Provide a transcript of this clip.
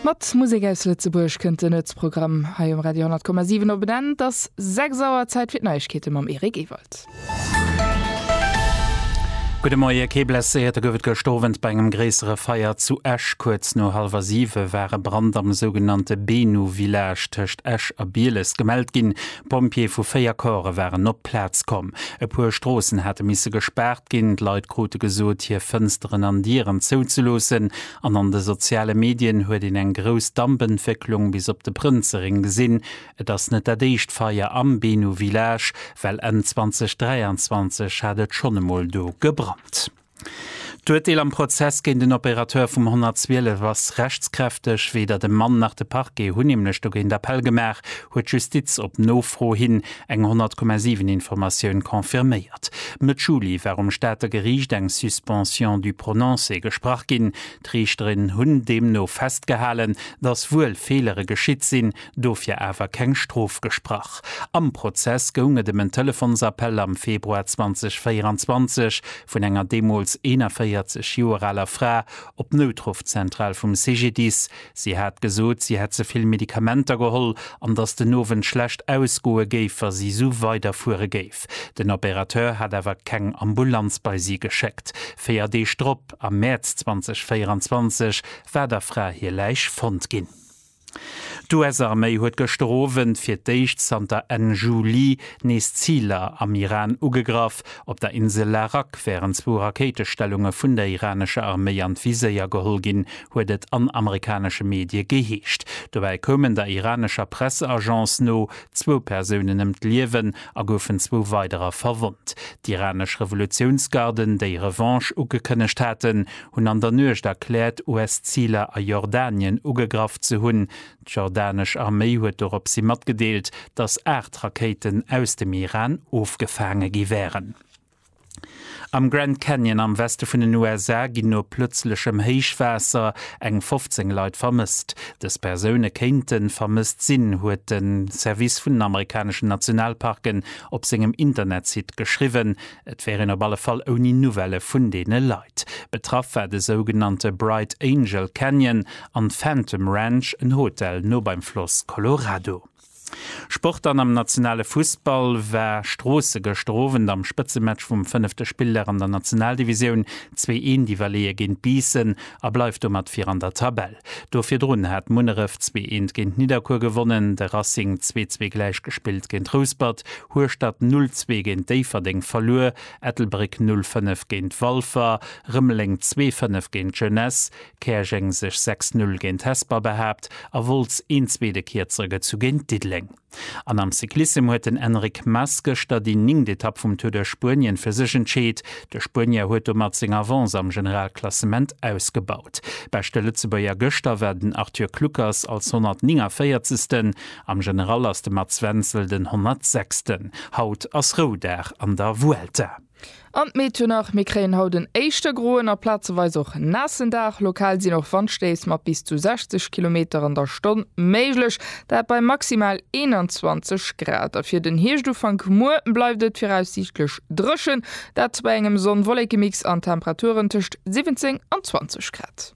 Mat Musek aus Lëtzebuerg kënnt den Nuetsprogramm hei um Radio 10,7 op en Enn. Et ass 6 Auer, Zäit fir d'Neiegkeete mam Eric Ewald. Gudde Moie, kee Blesséierte gouf et gëscht Owend bei engem gréissere Feier zu Esch. Kuerz no hallwer siwe war e Brand am sougenannte Benu-Village tëscht Esch a Bieles gemellt ginn. D'Pompjeeë vu véier Corpse waren op d'Plaz komm. E puer Stroossen hate misse gespaart ginn, d'Leit krute gesot, hir Fënsteren an Dieren zouzeloossen an an de soziale Medien huet een eng grouss Dampentwécklung bis op de Prënzerring gesinn. Et ass net dat éischt Feier am Benu Village, well Enn 2023 hat et schonn emol do gebrannt. D'Urteel am Prozess géint en Opérateur vum 112 ass rechtskräfteg. Weder de Mann nach de Parquet hunn nämlech dogéint Appell gemaach, huet d'Justiz op Nofro hin eng 100,7 Informatioun confirméiert. Mëtt Juli war um Stater Geriicht eng Suspension du prononcé gesprach ginn. D'Riichterin hunn deemno festgehalen, datt wuel Feelere geschitt sinn, dofir awer keng Strof gesprach. Am Prozess goung et ëm en Telefonsappell am Februar 2024 vun enger deemools 41 Joer aler Fra op d'Noutruffzentral vum CGDIS. Si hat gesot, si hätt ze vill Medikamenter geholl an datt den Owend schlecht ausgoe géif, wa si esou weiderfuere géif. Den Opérateur hat awer keng Ambulanz bei si geschéckt. Véier Deeg drop, am Mäerz 2024, war der Fra hir Läich fonnt ginn. D'US-Arméi huet gëschter Owend fir d'éischt zanter Enn Juli nees Ziler am Iran ugegraff. Op der Insel Larak wären zwou Rakéitestellunge vun der iranescher Arméi an d'Viséier geholl ginn, huet et an amerikanesche Medie geheescht. Dobäi koumen der iranescher Presseagence no zwou Persounen ëm d'Liewen a goufen zwou weiderer verwonnt. D'iranesch Revolutiounsgarden, déi Revanche ugekënnegt haten, hunn an der Nuecht erkläert, US-Ziler a Jordanien ugegraff ze hunn. D'jordanesch Arméi huet doropshi matgedeelt, datt 8 Rakéiten aus dem Iran ofgefaange gi wären. Am Grand Canyon am Weste vun den USA ginn no plëtzlechem Héichwaasser eng 15 Leit vermësst. Dës Persoune kéinte vermësst sinn, huet de Service vun den amerikaneschen Nationalparken op sengem Internetsite geschriwwen. Et wär een op alle Fall ouni Nouvellë vun deene Leit. Betraff war de sougenannte Bright Angel Canyon an Phantom Ranch, en Hotel no beim Floss Colorado. Sport dann Am nationale Fussball war Stroosse gëschter Owend am Spëtzematch vum fënnefte Spilldag an der Nationaldivisioun zwee Een-Diwwerleeë géint Biissen a bleift domat vir an der Tabell. Do virdrun hat Munneref zwee eent géint Nidderkuer gewonnen, de Racing zwee zwee gläich gespillt géint Rouspert, Hueschtert null zwee géint Déifferdeng verluer, Ettelbréck null fënnef géint Walfer, Rëmeleng zwee fënnef géint d'Jeunesse, Käerjeng sech sechs null géint Hesper behaapt a Wolz een zwee de Kierzere gezu géint Diddeleng. An am Cyclissem huet den Enric Mas gëschter déi ningt Etapp vum Tour de Spuenien fir sech entscheet. De Spuenier huet domat seng Avance am Generalklassement ausgebaut. Beschte Lëtzebuerger gëschter war den Arthur Kluckers als 149. Am General ass de Mats Wenzel den 106. Haut ass Roudag an der Vuelta. An d'Meteo nach, Mir kréien haut en éischter groen a plazeweis och naassen Dag. Lokal sinn och Wandstéiss mat bis zu 60 Kilometer an der Stonn méiglech, dat bei maximal 21 Grad. A fir den Hierscht-Ufank muer bleift et viraussiichtlech dréchen, dat bei engem Sonn-Wollekemix an Temperaturen tëscht 17 an 20 Grad.